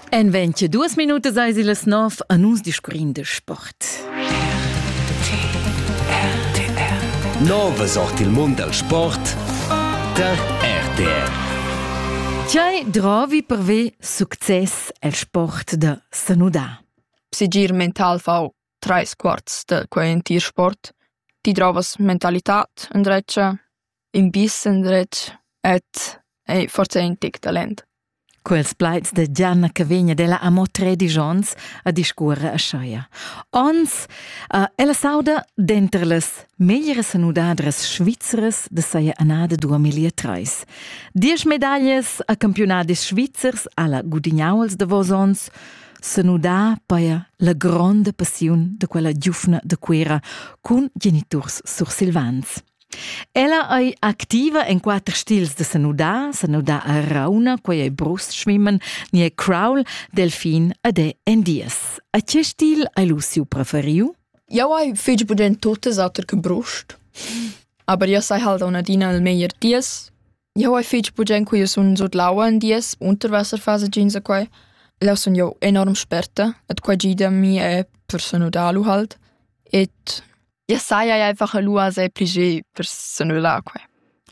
En 22 Minuten sei sie les Nov an uns discurrin de Sport. Nove sort il mund del sport der RTR. Tiai drovi per ve success el sport de Sanuda. Sigir mental fau treis quarts de quei entir sport. Ti drovas mentalitat, endreccia? in bissen dretg ed ei forsa in tec talent. Quels plaids de Gianna che vegn ad ella amo tredici onns a discuorre a Scheia. Ons, uh, ella sauda denter las meglieres nudadras svizzeres de saia annada 2003. Diesch medaglias a campionadis svizzers alla gudignauls de vos ons, se nudà paia la gronda passiun de quella giufna de Cuera cun geniturs sursilvans. Ella ei activa en quater stils da senudar, senudar a rauna, quei ei brust-schwimmen, ni ei crawl, delfin ed ei endies. A che stil hai lu siu preferiu? Jau hai fetg budent totes auter che brust. Aber io sai halt un adina il meglier dies. Jau hai fetg budent che io sun sut l'aua en dies, Unterwasserphase jeans e quai. Là sun jau enorm sperta, et qua gida mi è per senudar lu halt. Et Ja saja einfach lua sei pli ge per s'annullar quai.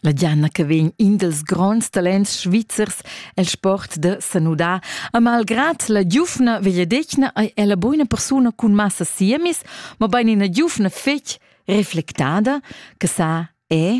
La Gianna che vegn in dels gronds talents svizzers el sport de sanudar, a malgrad la giufna vegliedecna ei ella buona persuna cun massa siemis, ma bein ina giufna fetg reflectada, che sa è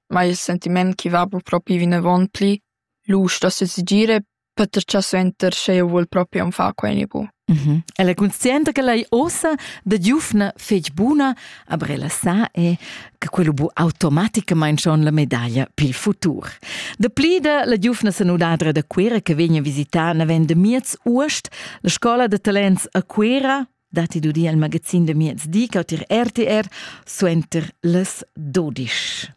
ma il sentiment chi va propi vinavant plü lusch da sezigire Peter cha suenter sch'eu voul propi am far quenipo. Mhm. Ella conscienta che lei ossa da giufna fetg buna, aber ella sa è che quello bu automaticamente schon la medaglia pil futur. Da plida la giufna sanudadra da Cuera che vegna a visitare navend de miez uost la scola de talents a Cuera dati du di al magazin de miez di cautir RTR suenter les 12.